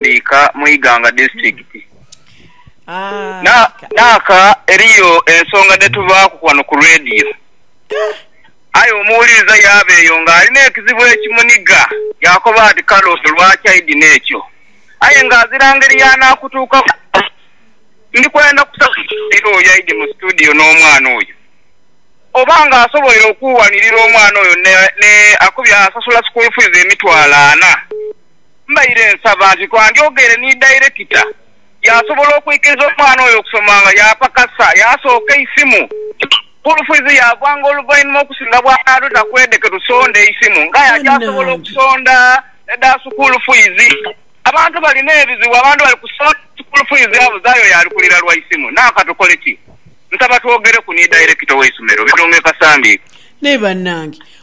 Ika mu Iganga Disiturikiti. Na, naaka, eriyo ensonga dhe tubaaku ghano ku leediyo. Aye omuwuliriza yaaba eyo nga alina ekizibu ekimuniga, yaakoba ati, Kale ono lwaki aidhina ekyo? Aye nga azira ngeri y'anaakutuukaku. Ndi kwenda kusaba omuzaire oyo aidhe mu situdiyo n'omwana oyo. Oba nga asoboire okuuwanirira omwana oyo ne, ne, akubye asasula sukuulu fiizi emitwalo ana. Mbaire nsaba nti twandyogeire ni dayirekita yaasobola okwikiriza omwana oyo okusoma nga yaapakasa yaasooka eisimu. Sukuulu fiizi yaagwanga oluvainhuma okusinga bw'anaadho takwede ke tusonda eisimu ng'aye aja asobola okusonda edha sukuulu fiizi. Abantu balina ebizibu, abantu bali kusonda sukuulu fiizi abuzaayo oyo ali kulira lwa isimu. Naa ka tukole ki? Nsaba twogereku ni dayirekita ow'eisomero, Birunge Kasambi. Naye bannange!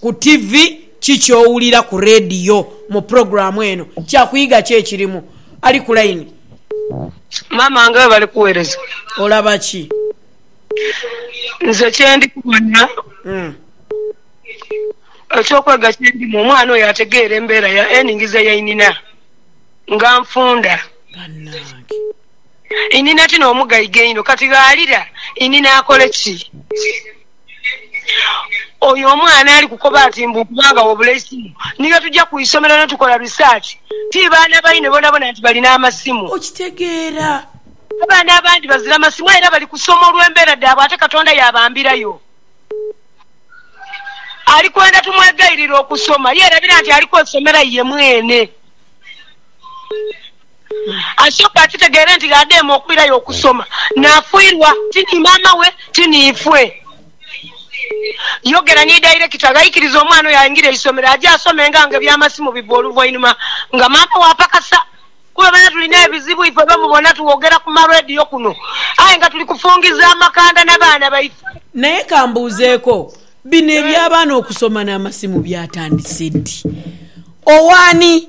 ku tivi, ki ky'owulira ku leediyo mu pulogulaamu eno, kya kuyiga ki ekirimu? Ali ku layini. Maama wange we bali kuweereza. Olaba ki? Nze kye ndi kubona, eky'okwega kye ndimu, omwana oyo ategeera embeera ya enhingiza ya inhina nga nfunda. Bannange! Inhina ti n'omugaiga einho, kati gh'alira, inhina akole ki? Oyo omwana ali kukoba ati mbu okuba nga wobula eisimu ni lwe tuja ku isomero ni tukola research. Ti baana baine bonabona nti balina amasimu. Okitegeera? Abaana abandi bazira masimu aye era bali kusoma olw'embeera dhaabwe ate Katonda yaabambirayo. Ali kwenda tumwegairire okusoma. Yeerabira nti ali kwesomera ye mwene. Ashoka akitegere nti gh'adheeme okwirayo okusoma, naafuirwa ti ni maama we ti ni ifwe. Yogera ni dairekita gh'aikiriza omwana oyo aingire eisomero aje asome nga nga eby'amasimu bigwa oluvainhuma nga maama we apakasa. Kuba bano tulina ebizibu ifwe be mubona tuwogera ku ma radio kuno aye nga tuli kufungiza amakanda na baana baife. Naye ka mbuuzeeko, bino eby'abaana okusoma n'amasimu byatandise ddi? Owaani?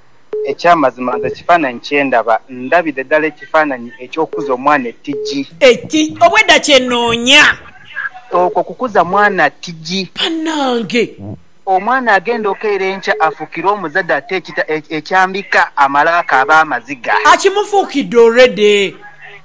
Eky'amazima nze ekifaananyi kye ndaba, ndabidhe dhala ekifaananyi eky'okukuza omwana etigi. Eti, Obwedha kye noonya. Okwo kukuza mwana tigi. Banange! Omwana agenda okeira enkya afuukire omuzadhe ate ekita ekyambika amale akaabe amaziga. Akimufuukidde already.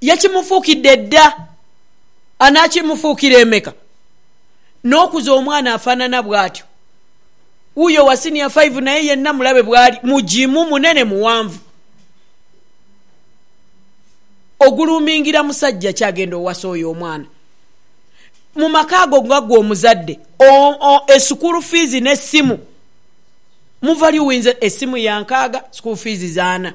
yakimufuukidde dda, anaakimufuukira emeka? N'okuza omwana afaanana bw'atyo. Wuuyo owa siniya faivu naye yenna mulabe bw'ali, mugimu, munene, muwanvu. Oguluumingira musajja ki agenda owasa oyo omwana? Mu maka ago nga ggwe omuzadde, esukuulu fiizi n'essimu muva liwinza. Essimu ya nkaaga, sukuulu fiizi za ana.